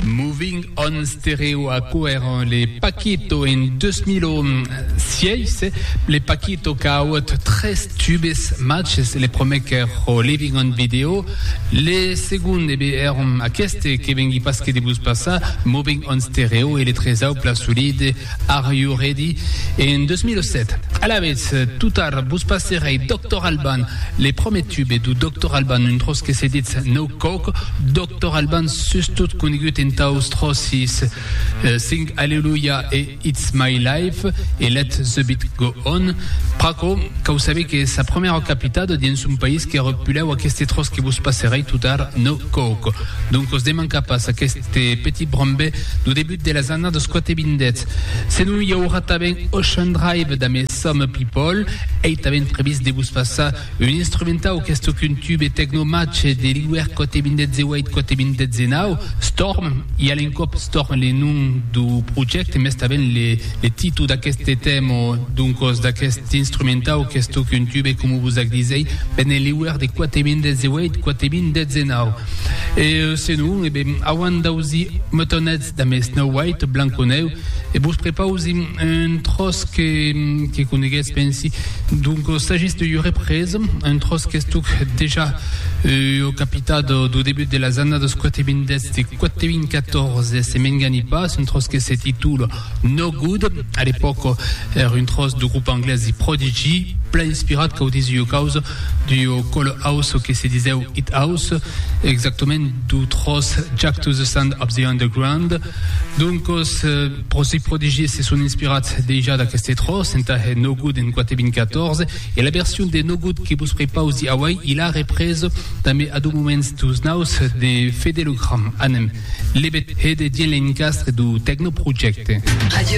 Moving on Stereo a coèron le Paquito en 2006, le Paquito qu'a auut tres tubes majs, le prumèr qu'èro Living on Video, le segond ebe èron aqueste que vengui pas que de vos passar, Moving on Stereo e le tresau Pla Solide. Are You Ready? en 2007. Alavetz, tot tard, vos passerèi Doctor Alban, le promèt tube do Doctor Alban, un tròç que se ditz No Coke, Doctor Alban sustot conegut entaus tròçis Sing Hallelujah e It's My Life e Let The Beat Go On. Pr'aquò, cau saber que sa promèra capitada dins son país qu'èra pulèu aqueste tròç que vos passerèi tot tard, No Coke. Doncos demanca pas aqueste. Este petit brambè lo debut de las annadas quate vindètz. Se non i aurà tanben Ocean Drive damb Some People, ei tanben previst de vos passar un instrumentau qu'es tòc un tube tecno-matge de l'iuèr quate vindètz e uèit quate vindètz e nau, Storm, i a l'encòp Storm le nom do projècte mès tanben le títol d'aqueste tèma, doncos d'aquest instrumentau qu'es tòc un tube coma vos ac disèi, ben en l'iuèr de quate vindètz e uèit quate vindètz e nau. E senon, e ben, auant d'ausi meutonets damb es Snow White, Blanconeu, e vos prepausi un tròç que que coneguetz, pensi. Donc, sagis de iure pres, un tròç qu'estuc dejà ua capitat dau debut de las annadas 420 e 414, se m'engani pas, un tròç que se titula, No Good, a l'epòca èr un tròç de grup anglés The Prodigy, plan inspirat cau dins ua causa d'ua cola house que se disèu It House, exactament dau tròç Jack to the Sound of the Underground. Doncas, The Prodigy se son inspirats dejà d'aqueste tròç entà hèr No Good en 4 e 2014, E la version de No Good que vos prepaus di auai, i la repres tanben a do moments dus naus de Fedelogram. Anem, lebet, hède dien l'encastre do Techno Projecte. Radio